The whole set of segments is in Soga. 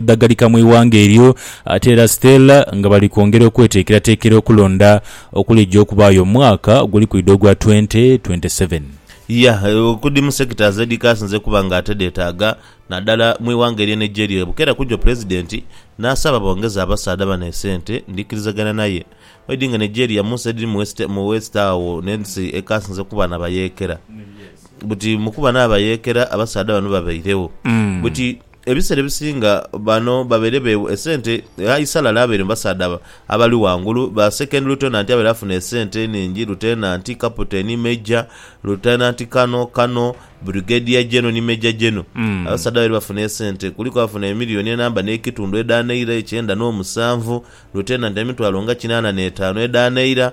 dhagalika mu ighanga eryo ate era Stella nga bali kwongera okweteekerateekera okulonda okuligya okubaayo omwaka oguli kwidha ogwa twente twente seveni. Yah, okudhi mu sectors edhikasinze okuba nga ate dheetaaga nadala mu ighanga erye Nigeria bukera kujo Pulezidenti naasaba bongeze abasaadha bano esente ndhikirizagana naye oidhi nga Nigeria munsi edhiri mu west agho nensi ekasinze okuba nabayeekera buti mukuba nabayeekera abasaadha bano babairegho buti Ebiseera ebisinga bano babaire beewa esente aye Salala abaire mu basaadha abali ghangulu, ba Second Lieutenant abaire afuna esente enhingi, Lutenanti, Kaputeni, Major, Lutenanti Kano, Kano, Brigadier General ni Major General. Abasaadha babaire bafuna esente kuliku abaafuna emiliyoni enamba n'ekitundu edha Naira ekyenda n'omusanvu, Lutenanti emitwalo nga kinaana n'etaanu edha Naira,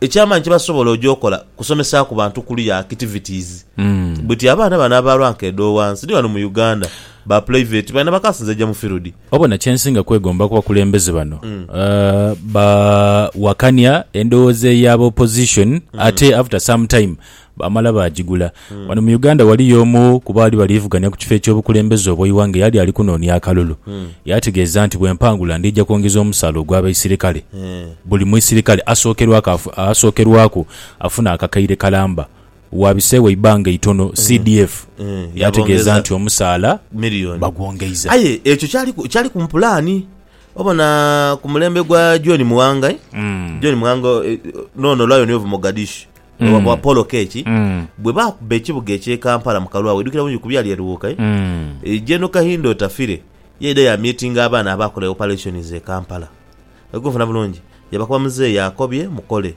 Eky'amaani kye basobola oja okola kusomesaaku bantu kuluya activities buti abaana bano aba rank edh'owansi ni ghano mu Uganda ba pulaiveti baine bakasinze ja mu firudi. Wabona kye nsinga kwegomba ku bakulembeze bano bawakania endhoghoza eya ba opposition ate after some time Baamala baagigula. Wano mu Uganda waliyo omu ku baali baliivugania ku kifo eky'obukulembeze obw'eighanga eyali ali kunoonia akalulu. Yategeeza nti, Bwe mpangula ndija kwongeza omusaala ogw'abaisirikale. Buli muisirikale asookerwaku afuna akakaire kalamba. Waabiseewo eibbanga eitono, CDF yaategeeza nti omusaala bagwongeiza. Aye ekyo kyaliku mu pulaani. Obona ku mulembe gwa John Muwanga, John Muwanga, n'ono Lionel of Mogadishu. Mm. wa- wa Paul Oketch Mm. bwe baakubba ekibuga eky'e Kampala mu kalwawo idhukira bulungi ku byali e Luwuuka eh? Mm. Eh, General Kahinda Otafire yaidha yaamiitinga abaana abaakola e operations e Kampala. Oli kunfuna bulungi? Yabakoba muzeeyi akobye mukole.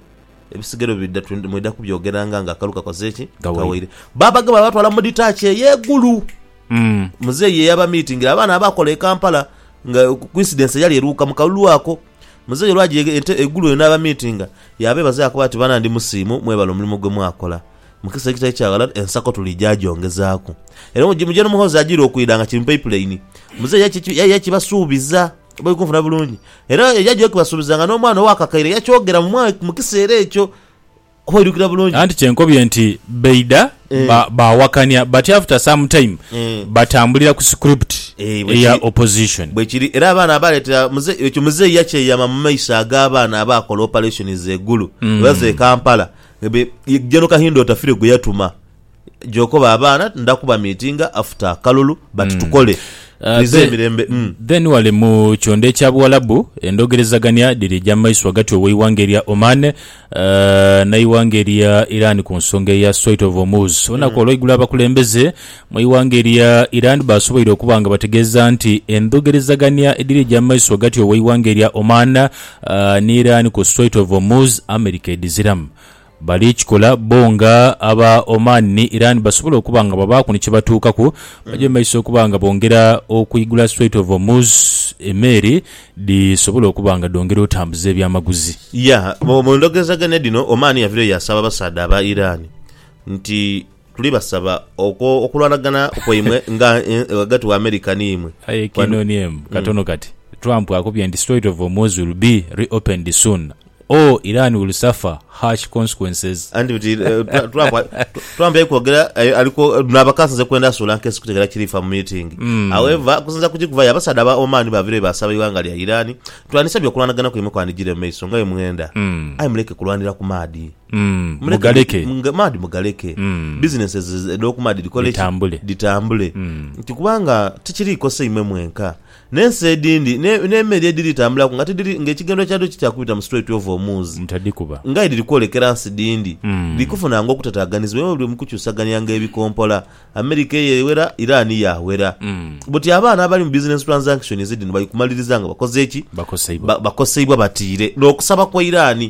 Ebisigere bwe bidda tu- mwidha kubyogeranga nga akalu kakoze ki? Kawaire. Kawaire. Baabagema baabatwala mu detach ey'egulu. Mm. Muzeeyi ye yabamiitingira abaana abaakola e Kampala nga coincidence yali e Luwuuka mu kalulu ako. Muzeeyi olwajiiga ente eigulu lino n'abamiitinga, yaabeebaza yaakoba ati, Bana ndi musiimu, mwebale omulimo gwe mwakola. Mu kiseera ekitali kya ghala ensako tuliija gyongezaaku. Era muje n'omuhoozi ajiire okwidha nga kiri mu paipuleini. Muzeeyi yaija yakibasuubiza bwaikunfuna bulungi. Era yaija okibasuubiza nga n'omwana ow'akakaire yakyogera mu kiseera ekyo. Oba oidhukira bulungi. Anti kyenkobye nti baidha ba, baawakania but after some time Eh. batambulira ku script Eh, bwe eya kiri. opposition. Bwekiri era abaana abaleetera muze- ekyo muzeeyi yakyeyama mu maiso ag'abaana abaakola operations e Gulu, oba ze Kampala, be- ye- General Kahinda Otafire gwe yatuma Gyokoba abaana nda kuba meetinga after akalulu but tukole Twize emirembe umm. Then wale mu kyondo ekya Buwalabu endhogerezagania dhirija mu maiso ghagati ow'eighanga erya Oman n'eighanga erya Iran ku nsonga eya Strait of Hormuz. Olunaku olweigulo abakulembeze mu ighanga erya Iran baasoboire okuba nga bategeeza nti endhogerezagania edhirija mu maiso ghagati ow'eighanga erya Oman ni Iran ku Strait of Hormuz America edhiziramu. Bali kikola bo nga aba Oman ni Iran basobola okuba nga babaaku ni kye batuukaku. Baja mu maiso okuba nga bongera okuigula Strait of Hormuz, emeeri dhisobole okuba nga dhongera otambuza ebyamaguzi. Ya, mu ndhogezaganya dhino, Oman yavireyo yaasaba abasaadha aba Iran nti. Tuli basaba okwo okulwanagana kwaimwe nga ghagati wa America ni imwe. Aye ekinoni em katono kati Trump akubye nti Strait of Hormuz will be re-opened soon or Iran will suffer harsh consequences. Anti buti Trump Trump yali kwogera ali kwo naaba kansinze kwenda asuula nkesi kutegera kirifa mu meeting. However okusinzira ku kikuvayo abasaadha aba Oman bavire bwebasaba eighanga lya Iran, Twandisabye okulwanagana kwaimwe kwandijire mu maiso nga bwemwenda aye muleke kulwanira ku maadhi. mugaleke. Maadhi mugaleke. Businesses edh'oku maadhi dhikole ki? Dhitambule. Dhitambule. Nti kubanga tikiri kosa imwe mwenka. N'ensi edhindi, n'emeli edhiri tambulaku nga tidhiri, nga ekigendwa kyadho ti kya kubita mu Strait of Hormuz, Mutadhikuba. nga aye dhiri kwolekera nsi dhindi, dhiri kufunaanga okutataaganizibwa imwe buli mu kukyusaganianga ebikompola. America eyo ewera, Iran yaawera. Buti abaana abali mu business transactions dhino bali kumaliriza nga bakoze ki? Bakoseibwa. Bakoseibwa batiire n'okusaba kwa Iran.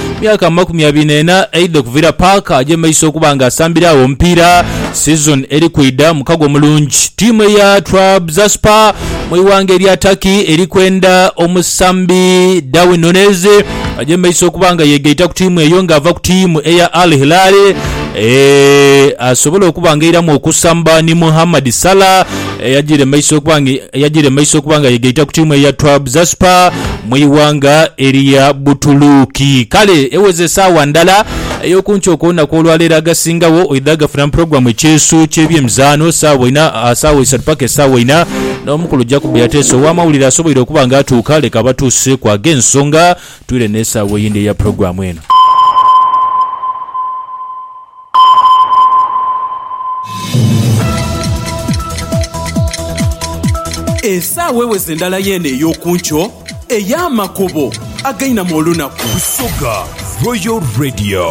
Myaka amakumi abiri n'ena eidha okuvira Parker agyembeisa okuba nga asambira agho omupiira sizoni eri kwidha. Mukago omulungi tiimu eya Trabzonspor mu ighanga erya Turkey eri kwenda omusambi Darwin Nunez agyembeisa okuba nga yegaita ku tiimu eyo nga ava ku tiimu eya Al Hilal asobole okuba nga eiramu okusamba ni Mohamed Salah. eyajire maiso okuba nga eyajire maiso okuba nga yegaita ku tiimu eya Trabzonspor mu ighanga erya Butuluuki. Kale eweze esaawa ndala ey'okunkyo okw'olunaku olwaleero agasingagho oidha gafuna mu pulogulaamu ekyeesu ky'ebyemizaano saawa ina saawa isatu paka esaawa ina n'omukulu Jacob Yateesa ow'amawulire asoboire okuba nga atuuka leka abatuuseku ag'ensonga twire n'esaawa eyindi eya pulogulaamu eno. Esaawa eweze ndala yeene ey'oku nkyo ey'amakobo againamu olunaku. Busoga Royal Radio.